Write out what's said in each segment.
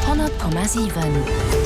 100,7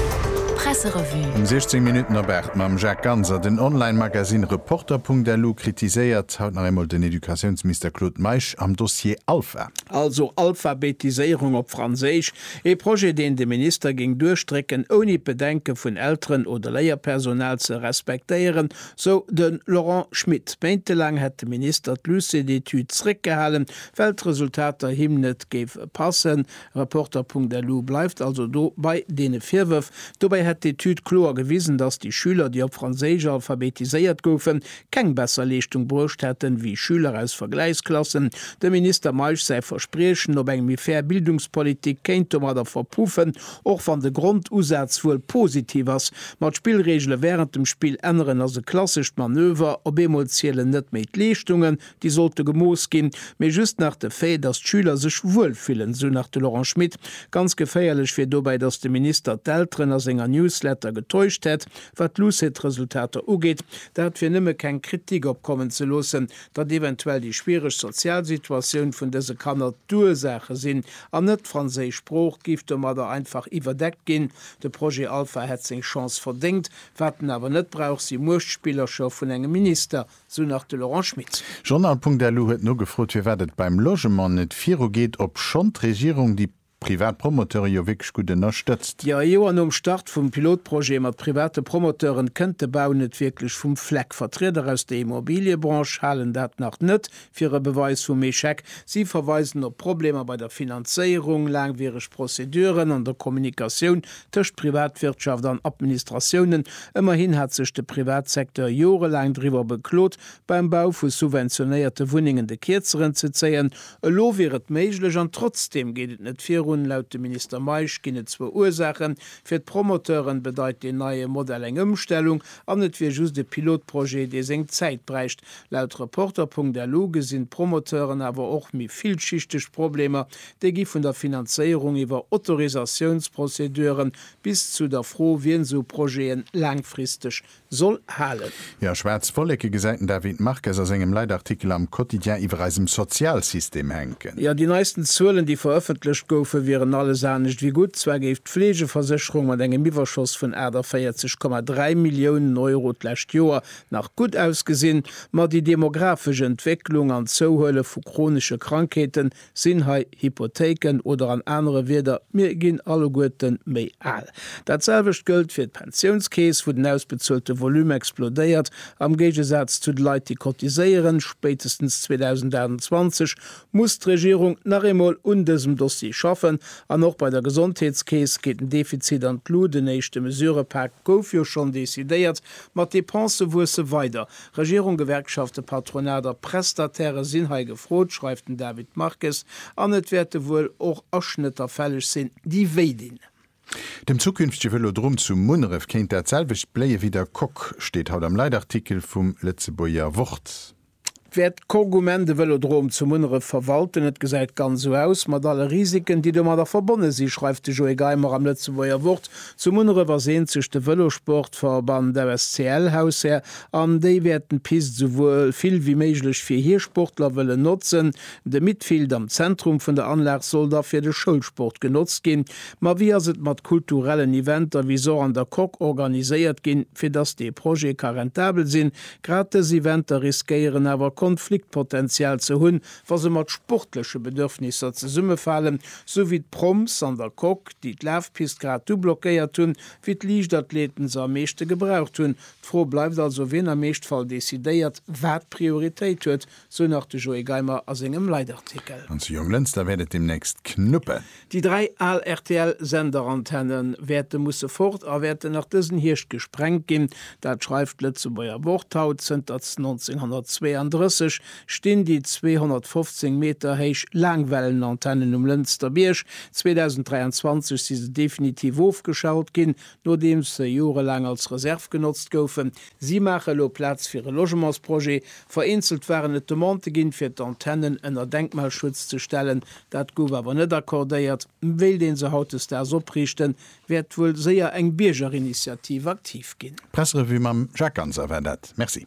Presserevue. Um 16 Minutten op 8 mam Jacques Ganser. Den Online-Magazine Reporter.lu kritiséiert haut nach eemol den Educatiounsminister Claude Meisch am Dossier Alpha. Also Alphabetiséierung op Franséisch, ee Projet deen de Minister géing duerchdrécken, ouni d'Bedenke vun Elteren oder Léierpersonal ze respektéieren, sou de Laurent Schmit. Méintelaang hätt de Minister d'Luce d'études zréckgehalen, Well d'Resultater him net géif passen. Reporter.lu bleift also do bei deene Virwërf. Dobäi hätt d'Etüd kloer gewisen, datt déi Schüler, déi op Franséisch alphabetiséiert goufen, keng besser Leeschtung bruecht hätten, wéi Schüler aus Vergläichsklassen. Dem Minister Meisch säi Verspriechen op eng méi fair Bildungspolitik kéint domadder verpuffen, och wann de Grondusaz wuel positiv ass. Ma d'Spillreegele wärend dem Spill änneren ass e klassescht Manöver, op eemol zielen net méi d'Leeschtungen, Déi sollte gemooss ginn, mee just nach de Fait, datt d'Schüler sech wuel fillen, esou nach de Laurent Schmit. Ganz geféierlech wier dobäi, datt de Minister d'Elteren a senger Newsletter getäuscht hätt, wat d'LUCET-Resultater ugeet. Dat wier nëmme keng Kritik opkommen ze loossen, datt eventuell déi schwiereg sozial Situatioun vun dëse Kanner d'Ursaache sinn, an net d'franséisch Sprooch géif domadder einfach iwwerdeckt ginn. De Projet Alpha hätt seng Chance verdéngt, wat en awer net brauch, si Muechtspillercher vun engem Minister. sou nach de Laurent Schmit. Journal.lu huet nogefrot, firwat et beim Logement net virugeet, obschonn d'Regierung déi privat Promoteure jo wierklech gutt ënnerstëtzt. Jo, ee Joer nom Start vum Pilotprojet mat private Promoteuren kënnt de Bau net wierklech vum Fleck. Vertrieder aus der Immobiliëbranche halen dat nach net fir e Beweis vum Echec. Si verweisen op Problemer bei der Finanzéierung, laangwiereg Prozeduren an der Kommunikatioun tëscht Privatwirtschaft an Administratiounen. Ëmmerhin hat sech de Privatsecteur jorelaang driwwer beklot, beim Bau vu subventionéierte Wunnengen de Kierzeren ze zéien. Elo wier et méiglech an trotzdeem geet et net virun. Laut dem Minister Meisch ginn et zwou Ursaachen, Fir d'Promoteuren bedeit deen neie Modell eng Ëmstellung an et wier just e Pilotprojet, dee seng Zäit bräicht. Laut Reporter.lu gesinn d'Promoteuren awer och méi villschichteg Problemer, Déi gi vun der Finanzéierung iwwer Autorisatiounsprozeduren bis zu der Fro, wien esou Projete laangfristeg soll halen. Jo, schwaarz Wolleke gesäit den David Marques a sengem Leitartikel am Quotidien iwwer eisem Sozialsystem hänken. Jo, déi neisten Zuelen, déi verëffentlecht goufen, wieren alles anescht ewéi gutt. Zwar géif d'Fleegeversécherung mat engem Iwwerschoss vun 48, 3 Milliounen Euro d'lescht Joer nach gutt ausgesinn, ma déi demografesch Entwécklung an d'Zouhuele vu chronesche Krankheeten Sinn hei Hypothéiken oder an anere Wieder, mir ginn alleguerte méi al. Dat selwecht gëllt fir d'Pensiounskeess, wou den ausbezuelte Volume explodéiert, am Géigesaz zu de Leit, déi cotiséieren. Spéitestens 2028 muss d'Regierung nach eemol un dësem Dossier schaffen. An och bei der Gesondheetskeess geet den Defizit an d'Lut. En éischte Mesurëpak gouf jo schonn decidéiert, ma d'Depensë wuesse weider. Regierung, Gewerkschaften, Patronat a Prestataire sinn hei gefrot, schreift den David Marques, an et wäerte wuel och Aschnëtter fälleg sinn, déi wéi dinn. Dem zukünftege Vëlodrom zu Munneref kéint dat selwecht bléie wéi der Coque, steet haut am Leitartikel vum Lëtzebuerger Wort. Wäert d'Coque um Enn de Vëlodrom zu Munneref verwalten? Et gesäit ganz esou aus, mat alle Risiken, déi domadder verbonne sinn, schreift de Joé Geimer am Lëtzebuerger Wort. Zu Munneref ass eenzeg de Vëlossportverband FSCL Haushär an déi wäerten d'Pist esou wuel vill wéi méiglech fir hir Sportler wëllen notzen. De Midfield am Zentrum vun der Anlag soll da fir de Schoulsport genotzt ginn. Ma wéi ass et mat kulturellen Eventer wéi Sort an der Coque organiséiert ginn, fir dass dee Projet ka rentabel sinn? Grad dës Eventer riskéieren awer Konfliktpotential ze hunn, wa se mat sportleche Bedürfnisser zesummefalen, sou wéi d'Proms an der Coque, déi d'Lafpist grad du blockéiert hunn, wéi d'Liichtathleten se am meeschte gebraucht hunn. D'Fro bleift also, wien am Eeschtfall decidéiert, wat Prioritéit huet, sou nach de Joé Geimer a sengem Leitartikel. An zu Jonglënster wäert et deemnächst knuppen. Déi dräi al RTL-Senderantenne wäerte musse fort a wäerten nach dësen Hierscht gesprengt ginn. Dat schreift d'Lëtzebuerger Wort haut. Zënter 1932 stinn déi 215 Meter héich Laangwellenantennen um Lënster Bierg. 2023 si se definitiv ofgeschalt ginn, nodeems se jorelaang als Reserv genotzt goufen. Si maache elo Plaz fir e Logementsprojet. Vereenzelt waren et Demandë ginn, fir d'Antennen ënner Denkmalschutz ze stellen, Dat gouf awer net accordéiert. Wéilt een se hautdesdaags opriichten, wäert wuel séier eng Biergerinitiativ aktiv ginn. Presserevue mam Jacques Ganser war dat. Merci.